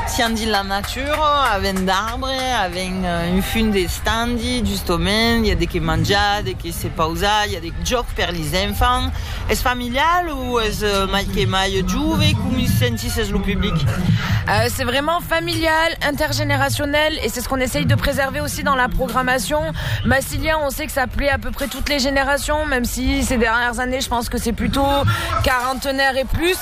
Sián dins la natura, avèm d'arbre, avèm un fum d'estandi, justament, i a de qué manjar, de qué se pausar, i a de jòcs per lis enfants. Es familial o es mai que mai jove? Com i sentís es lo public? C'est vraiment familial, intergeneracionel et c'est ce qu'on essaye de préserver aussi dans la programmation. Massilia, on sait que ça plaît à peu près toutes les générations, même si ces dernières années, je pense que c'est plutôt quarantenaires et plus.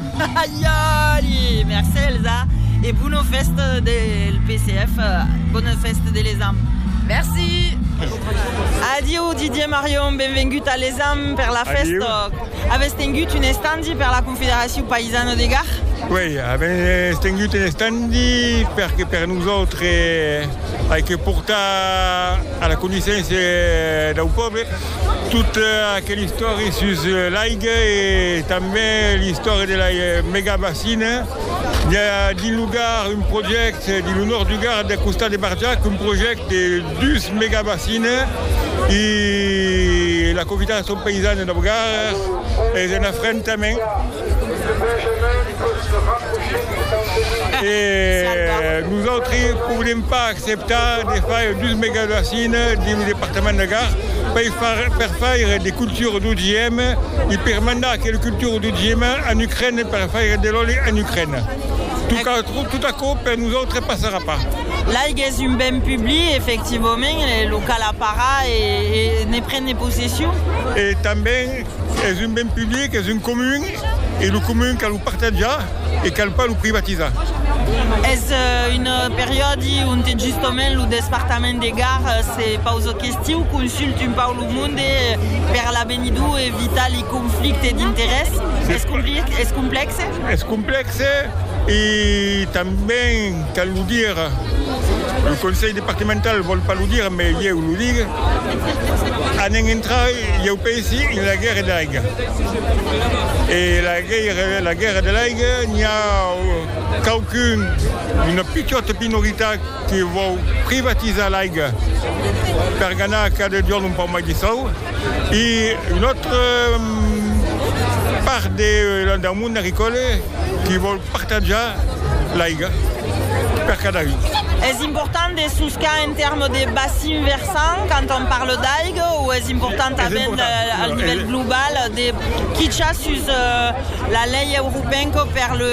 Aiòli! Merci Elsa e bona fèsta del PCF, bona fèsta de l'Exam. Merci! Adieu Didier Marion, benvengut a l'Exam per la fèsta. Avètz tengut un estandi per la Confederacion Paisana de Gard? Uèi, avètz tengut un estandi perque per nosautres ai que portar a la coneissença dau pòble Tota aquela istòria sus l'aiga e tanben l'istòria de la megabacina. I a dins lo Gard un projècte, dins lo nòrd du Gard, al costat de Barjac, un projècte de dus megabacina e la Confederacion Paysane dau Gard es en afrentament. E nosautres podem pas acceptar de faire dus megabassines dins lo departament de Gard per faire de cultura d'OGM e per mandar aquela cultura d'OGM en Ucraina per faire de l'òli en Ucraina. Tot aquò per nosautres passarà pas. L'aiga es un ben public, efectivament, e lo cal aparar e ne prene possession. Es un ben public, es un comun, e lo comun cal lo partatjar e cal pas lo privatizar. Es un periòdi onte justement lo despartament de Gard se pausa questiu, consulta un pauc lo monde per l'avenidor e evitar li conflictes d'interès. Es complèxe? Es complèxe e tanben. Cal lo dire, lo Conselh Departemental vòl pas lo dire, mai ieu lo dic, anem entrar, ieu pensi, en la guèrra de l'aiga. E la guèrra de l'aiga, n'i a quauqu'un, una pichòta minoritat que vòu privatizar l'aiga per ganar cada jorn un pauc mai de sòu. E un autre part del mond agricòle qui vòl partatjar l'aiga per cada un. Es important de soscar en tèrmes de bacin versant quand on parle d'aiga o es important tanben al nivèl global de quichar sus la lei europènca per le.